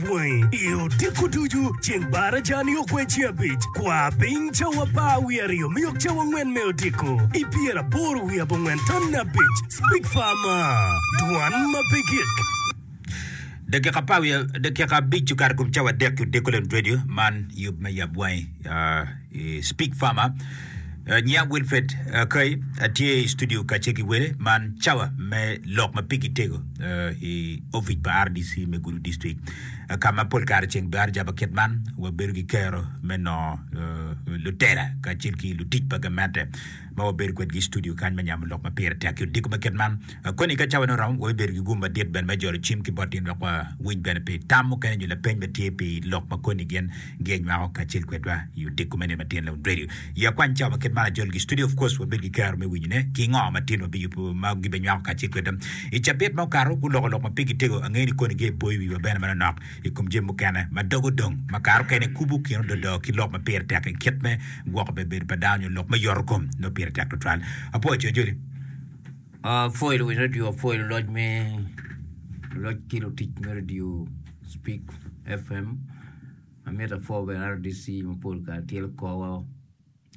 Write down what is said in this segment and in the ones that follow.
bwangi i odiko ducu ceng barajani okweci abic. Kwa piny cawa apar wiye aryo me yok cawa angwen me odiko i pyeraboro wiye abongwen tamne abic. Speak far ma dwan ma pe gik. Dakika apar wiye dakika abic okato ikom cawa adek ki odiko lem radio man yub me yab bwangi i speak far ma. Anyia Wilfred Akay atye i studio kacce ki wele man cawa me lok ma pigi tego i ofic pa RDC me Gulu District ka ma pol kare ceng dwaro jabo kit man wabedo ki kero me nongo lutela kacel ki lutic pa gamente ma wabedo kwedgi i studio kany me nyamo lok ma pire tek ki odiko ma kit man. Koni ka cawane oromo wabibedo ki gum madit bene me jolo cim ki bot in wek wawiny bene pi tam mukene nyo lapeny ma tye pi lok ma koni gin Gi anywako kacel kwedwa i odiko me Nino Tyen Lewun Radio. I akwany cawa ma ket mar ajol gi studio of course wabed ki kero me winyone ki ngo ma tyen wabiyubo ma gibe nywako kacel kwedwa. I cabit ma okato guloko lok ma pigi tego ange ni koni ge boyo wiwa bene manonok i kom jami mukene ma dogo dong ma kare okene kubu kino dodo ki lok ma pire tek i kit me gwoko bebedo pa dano nyo lok me yoto kom nongo pire tek tutwal. Apwoyo co joli. Apwoyo luwiny radio, apwoyo luloc me luloc ki lutic me radio. Speak FM, amito apwo bene RDC mapol kare tye lukowa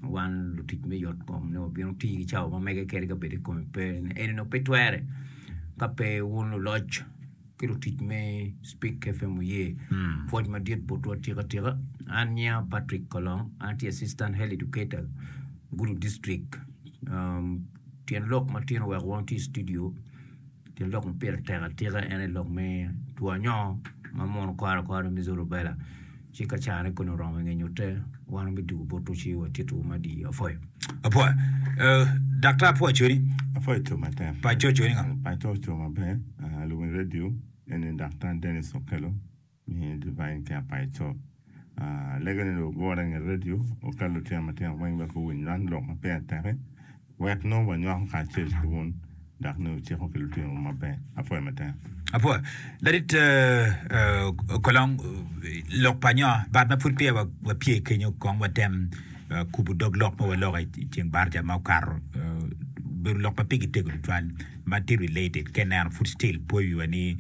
wan lutic me yot kom ni wabino ti ki cawa ma mege kede ka bedi kome pe eni dong pe twere ka pe wun luloc ki lutic me Speak FM oye pwoc madit botwa tika tika an nyinga Patrick Kolong an tye assistant health educator Gulu district um, tyen lok matino wek wang ti i studio Gin lok ma pire tek atika en aye lok me two anyongo ma mono kwaro kwaro me measles rubella ci ka caro ne koni oromo nge nyute wan wa bidugo bot to ci wa tito wu madi apoyo apoyo eh, daktar apoyo codi Apoyo co matek. pa co codi nga Paco co maber. Ah, lubongo radio. Eni Daktar Dennis Okello. ni Divine Care pa Ecop. Lega ni dong ogure inge redio okel lutino matino weng wek guwiny lwany lok ma peya teke wek nongo wanywako kacel ki wun dok ni wuciko ki lutinowu maber. Apwoyo matek. Apwoyo. Ladit Kolong, lok pa nyo bat ma pud peya wapye kenyo kong watem kubo dog lok ma waloko i ceng barca ma okato. Obedo lok ma pigi tego tutwal ma ti related ka ineno pud still pwoyo wiwa ni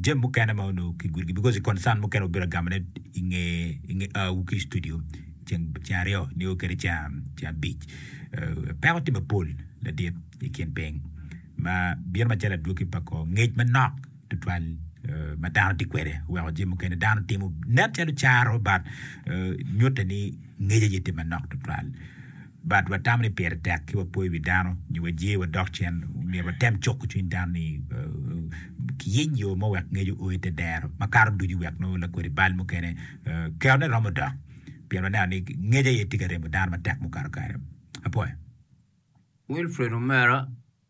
jami mukene ma onongo kigudo gi because concern mukene wabiro agamone i nge i nge awu ki i studio ceng ceng aryo nio kede ceng ceng abic Eh, peko tye mapol ladit i kin piny ma bino macalo adwoki pa kor ngec manok tutwal eh, ma dano tye kwede weko jami mukene dano timo nen calo caro but eh, nyutte ni ngec aye tye manok tutwal But watamo ni pire tek ki wapo i wi dano nyo waje wadok cen, myero watem cuko cwiny dano ni kiyiny yo mo wek ngec o i te dero makato ducu wek nongo lakodi bal mukene kerone romo dok pien waneno ni ngec aye tye ka remo dano matek mukato kare. Apoya. Wilfred omera.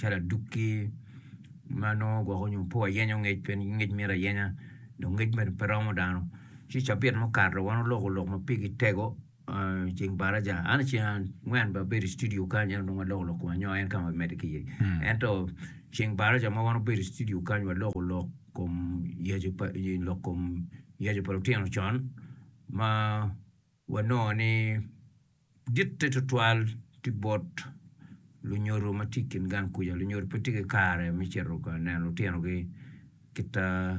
calo adukki ma nongo gwoko nyo pe wayenyo ngec pien ngec mito ayenya dong ngec mere pe romo dano ci cabit mukato wan oloko lok ma pigi tego i ceng baraja an i ceng angwen bene abedo i studio kany ento nongo aloko lok koma anyoga en ka ma bimedde ki iye ento ceng baraja ma wan obedo i studio kany waloko lok kom yecu pa lok kom yecu pa lutino con ma Wanongo ni ditte tutwal tye bot lunyodo ma tye i kin gang kuca. Lunyodo pe tye ki kare me cito ka neno lutinogi kit ma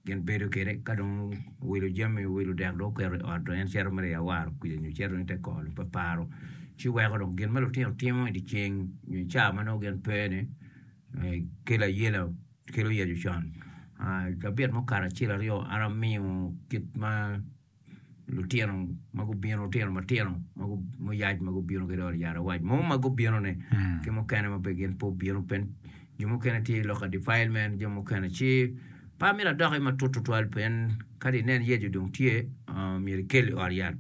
gin bedo kwede. Ka dong owilo jami, owilo dek dong oketo i ot dong en cito mere i awaro kuca nyo cito i te kor-ri pe paro. Ci weko dong gin ma lutino timo i dye ceng nyo i caa ma nongo gin pe-ni kelo ayela, kelo yecu con. Cabit mukato acel aryo an amiyo kit ma. lutino ma gubino lutino matino muyac ma gubino ki dong yat awac mo ma gubino-ni ki mukene ma gin pe obino pe jo mukene tye lok ka defilement jo mukene ci pe amito adoki matut tutwal pien ka dong inen Yecu dong tye myero ikel i ot yat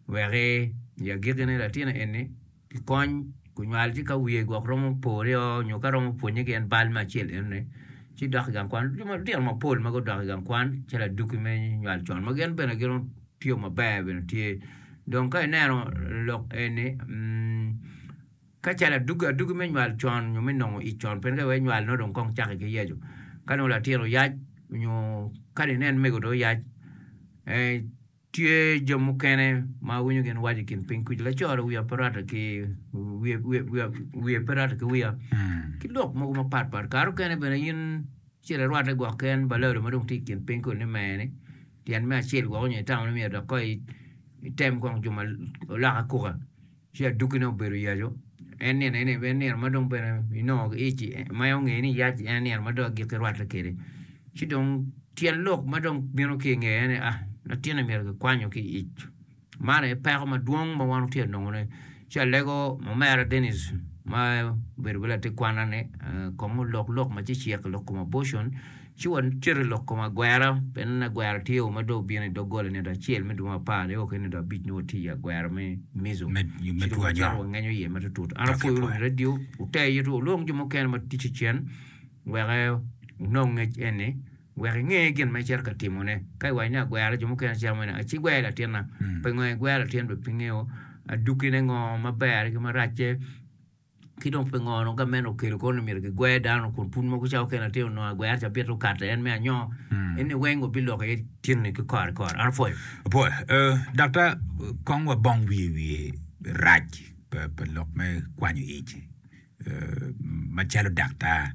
wek i agikki-ni latinna eni ki kony kunywal ci ka wiye gwok romo pore o nyo ka romo pwonnye ki en bal me acel eno ni ci dok i gang kwan lutino mapol ma gudok i gang kwan ci laduki me nywal con ma gin bene giromo tiyo maber bene tye dong ka ineno lok eni ka calo aduki aduki me nywal con nyo me nongo ic con pien ka iwee nywal nongo dong kong caki ki yeco ka nongo latin oyac nyo kadi nen mego dong oyac Tye jo mukene ma awinyo gin waco i kin piny kuca, Laco-ri wiya pe rwatte ki wiye, wiye, wiya, wiye pe rwatte ki wiya, ki lok mogo mapat pat. Kare mukene bene in acel irwatte gwok ki en balado ma dong tye i kin piny kulu ni mer-ni, tyen me acel gwok onyo itamo ni myero dok kong i- item kong juma olok akuka. Ci adukkine obedo yaco, en nino eni en nino ma dong bene inongo ic ma en ongeyo ni yac en nino ma dong agikki rwatte kwede. Ci dong tyen lok ma dong bino ki i ngeye en aye, Ah, latinni myero kikwanyo ki i ic. Man aye peko madwong ma wan watye ka nongone. Ci alego omera Dennis ma obedo bene latin kwanna ni kong olok lok ma cecek lok kom abortion. Ci wacit i lok kom agwera, pien aneno ni agwera tye o ma dong obino i doggola i nino acel me dwe ma apar nio ki i nino abic nyo watye i agwera me Mizo. Ci dong wacito wangenyo iye matutut. An apwoyo wunu wi radio, wute ito wulwong jo mukene ma ticci cen wek wunong ngec eni, wek inge gin ma icito ka timone. Ka iwaco ni agwera jo mukene cito mene, aci gwer latinna. Pingo en gwer latin bene? Pingo adukine ngo ma berre ki maracce? Ki dong pingono gamente okelo kwo ni myero gigwer dano kun pud mogo ca okene atir onongo agwer ca bito kate en me anyoo eni weng wabiloko iye tinni ki kore kore an apwoyo Apwoyo. Eh, dakta, kong wabong wiye wiye rac pa, pa lok me kwanyo ic, eh, macalo daktar.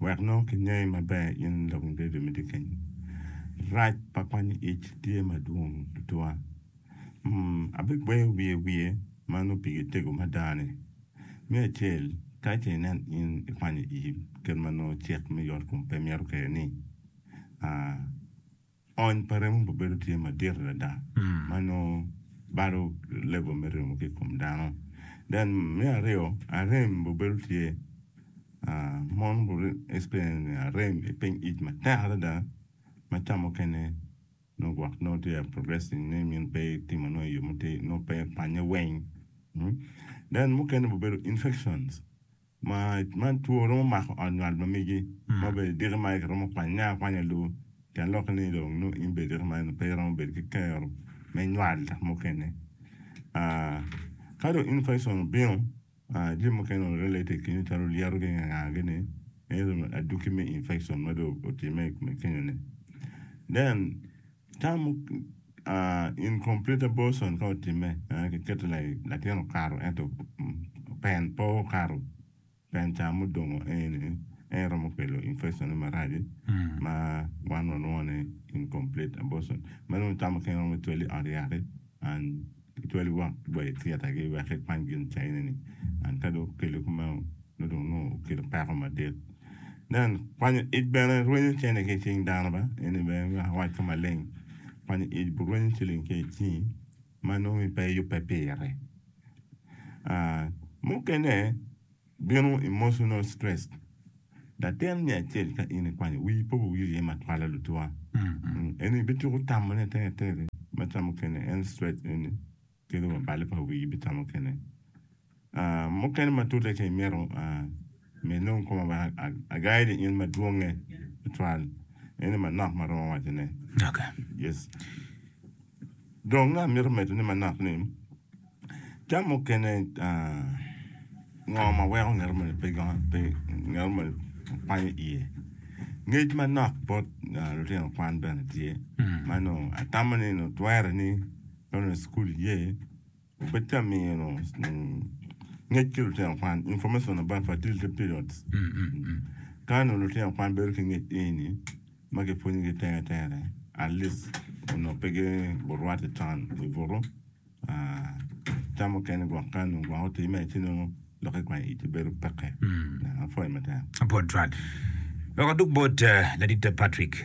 Wek nongo kingeyi maber in lok ma Bibel miti kenyu, rac pa kwanyo ic tye madwong tutwa. Abigweyo wiye wiye ma nongo pigi tego mada-ni. Me acel, tika ce inen in ikwanyo ic kit ma nongo cik me yotkom pe mito kwede-ni? Ony pa remo pa bedo tye madit adada ma nongo balo level me remo ki i kom dano. Then me aryo, arem pa bedo tye mon gu experience arem i piny ic matek adada ma ca mukene nongo gwok nongo tye ka progressing ni min pe itimo nongo i yo mutir nongo pe pannye weng. Then mukene pa bedo infections. Ma man two romo mako ot ngat mamegi ma bene diki ma ki romo kwanye akwanya luu pien lokke ni dong nongo in bene diki man pe iromo bedo ki kero me nywal dok mukene ka dong infection obino jami mukene onongo related ki nyo calo lyeto ki nganga gi ni ento aduki me infection ma dong otimme i kome kenyo ni then Tam, Incomplete abortion ka otimme, kiketo latin okato ento pen pe okato, pen ca mudongo eni en romo kelo infection marac-ci ma wan walwongo ni incomplete abortion. Meno tam mukene romo twali i ot yat-ti. An atwali wang wa i thietagi wek ikwany gin caineni. An ka dong okele kumeno, nongo dong nongo okelo peko madit. Nen, kwanyo ic bene rwenyo cene ki i cing dano ba? Eni bene wek awac ka maleng, kwanyo ic birwenyo ciling ki i cingi ma nongo pe iyubbe pire. Mukene, Bino Emotional Stress, Latin me acel ka in ikwanyo wi pe wowil iye ma twalo lutwa eni bituko tamo ne atir atir ma ca mukene en stress eni kelo wa balo pa wii bita mukene mukene ma tute ka imito me nongo koma wek agai ni in ma dwonge tutwal eni manok ma aromo waco ne. Dong nga mito medo ni manok ni tam mukene ngo ma weko ngeto moni pe ngeto moni kwanyo iye? Ngec manok bot lutino kwan bene tye ma nongo atamo ni nongo twere ni nongo cukul iye. Betamino ngec ki lutino kwan, information about fertility periods. Ka nongo lutino kwan bedo ki ngec eni ma kipwonyogi tere tere at least onongo pe gurwate can i butu. Tam mukene gwok ka nongo gwok otimme ci nongo lok ki kwanyo iti bedo peke. Apwoyo matek. Apwod twal. Wek adug bot Laditta Patrick.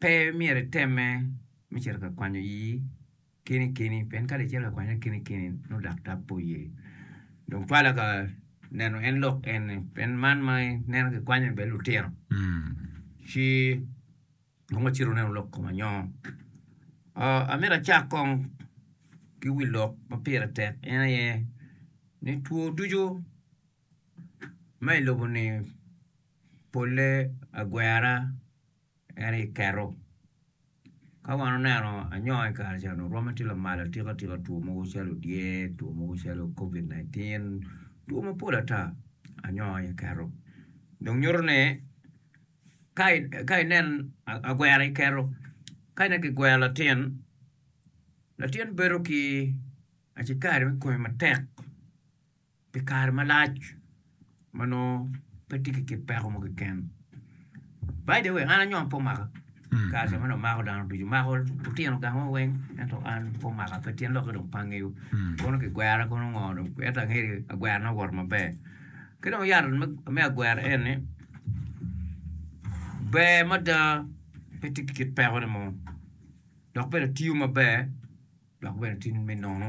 Pe myero itemme me cito ka kwanyo ii kini kini, pien kadi icito ka kwanyone kini kini nongo daktar pe oye. Dong twala ka neno en lok en ni, pien man ma ineno ki kwanyo ni bene lutino ci dong wacit wunenu lok kom anyoo. Aa, amito acak kong ki wi lok ma pire tek en aye ni two ducu ma i lobo ni polle agwera. En aye keto. Ka wan oneno anyonga i kare ca onongo rwomme tye lamal atika tika two mogo calo dyer, two mogo calo covid nineteen, two mapol ata anyonga aye keto. Dong nyuto ni ka ka inen agwera aye keto, ka ineno ki gwero latin, latin bedo ki acikari me konyo matek. pi kare malac ma nongo pe tye ki kit peko mo keken. By the way, an anyom pe omaka kare ca ma dong mako dano ducu, mako lutino gango weng ento an pe omaka pe tyen lokke dong pe angeyo kono kigwera kono ngo dong ento angeyo ni agwerana owoto maber. Ki dong yat me me agwera en ni ber mada pe tye ki kit pekone mo dok bene tiyo maber dok bene tye me nono.